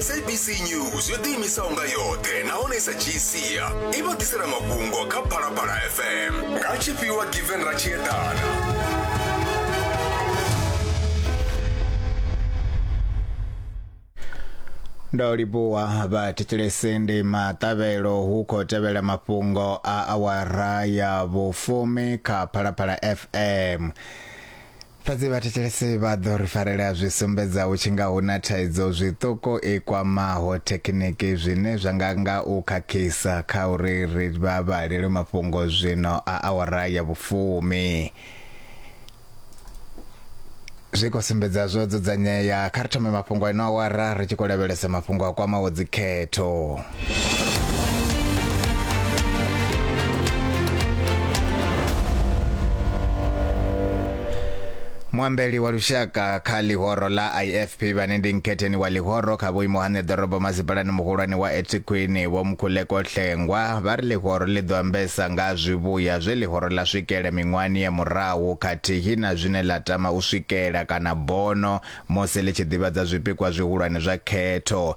sabc news yo ḓiimisaho nga yoṱhe nahone sa dzhii sia i vha ḓisela mafhungo kha phalaphala fm nga tshifhiwa given ra tshi eḓana ndo livhuwa vha thetshelese ndi maṱavhelo hu khou tevhela mafhungo a awara ya vhufumi kha phalaphala fm Fhedzi vhathetshelesi vha ḓo ri farelea zwi sumbedza hu tshi nga hu na thaidzo zwiṱuku i kwamaho thekhiniki zwine zwa nga nga u khakhisa kha uri ri vha vhalelwe mafhungo zwino a awara ya vhufumi. Zwi khou sumbedza zwo dzudzanyea. Kha ri thome mafhungo a ino awara ri tshi khou lavhelesa mafhungo a kwamaho dzikhetho. muambeli wa lushaka kha ḽihoro ḽa ifp vhane ndi nkhetheni wa ḽihoro kha vhuimo ha ṋeḓorobo masipalani muhulwane wa ethekwini vho mkhuleko hlengwa vha ri ḽihoro ḽi ḓo ambesa nga zwivhuya zwe ḽihoro ḽa swikela miṅwahani ya murahu khathihi na zwine ḽa tama u swikela kana bono musi ḽi tshi ḓivhadza zwipikwa zwihulwane zwa khetho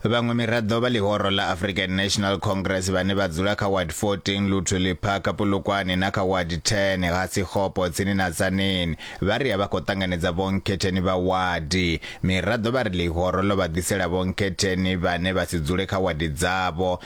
Vhaṅwe miraḓo vha ḽihoro ḽa African National Congress vhane vha dzula kha Ward 14 Luthuli Park, Polokwane na kha Ward 10 ha Sekgopo tsini na Tzaneen vha ri a vha khou ṱanganedza vhonkhetheni vha wadi. Miraḓo vha ri ḽihoro ḽo vha ḓisela vhonkhetheni vhane vha si dzule kha wadi dzavho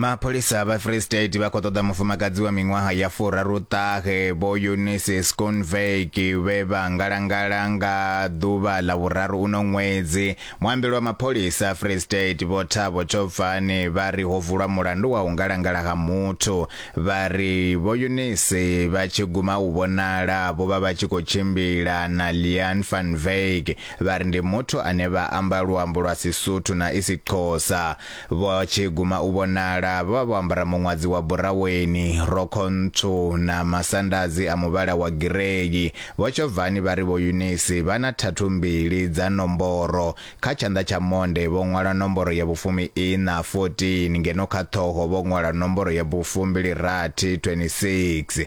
mapholisa vha free state vha khou ṱoḓa mufumakadzi wa miṅwaha ya furaruṱahe vho eunice sconvek vhe vha ngalangala nga ḓuvha ḽa vhuraru uno ṅwedzi Muambeli wa mapholisa a Free State Vho Thabo Thobvani vha ri ho vulwa mulandu wa u ngalangala ha muthu. Vha ri Vho Eunice vha tshi guma u vhonala vho vha vha tshi khou tshimbila na Leanne Van Wyk vha ri ndi muthu ane vha amba luambo lwa Sisuthu na Isixhosa. Vho tshi guma u vhonala, vho vha vho ambara muṅwadzi wa buraweni, rokho ntswu na masandadzi a muvhala wa girei. Vho Tshovhani vha ri Vho Yunisi vha na thathu mbili dza nomboro. Kha tshanḓa tsha monde vho ṅwala nomboro ya vhufumi-iṋa, 14, ngeno kha ṱhoho vho ṅwala nomboro ya vhufumbili-rathi, 26.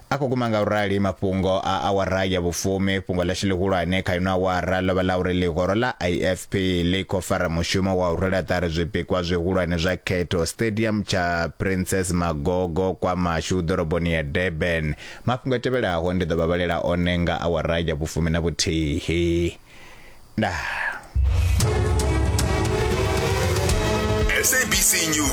a khou guma nga u rali mafhungo a awara ya vhufumi. Fhungo ḽashu ḽihulwane kha ino awara ḽo vha ḽa uri ḽihoro ḽa IFP ḽi khou fara mushumo wa u rwela ṱari zwipikwa zwihulwane zwa khetho Stadium tsha Princess Magogo, KwaMashu, ḓoroboni ya Durban. Mafhungo a tevhelaho ndi ḓo vha vhalela one nga awara ya vhufumi na vhuthihi. Ndaa. SABC News.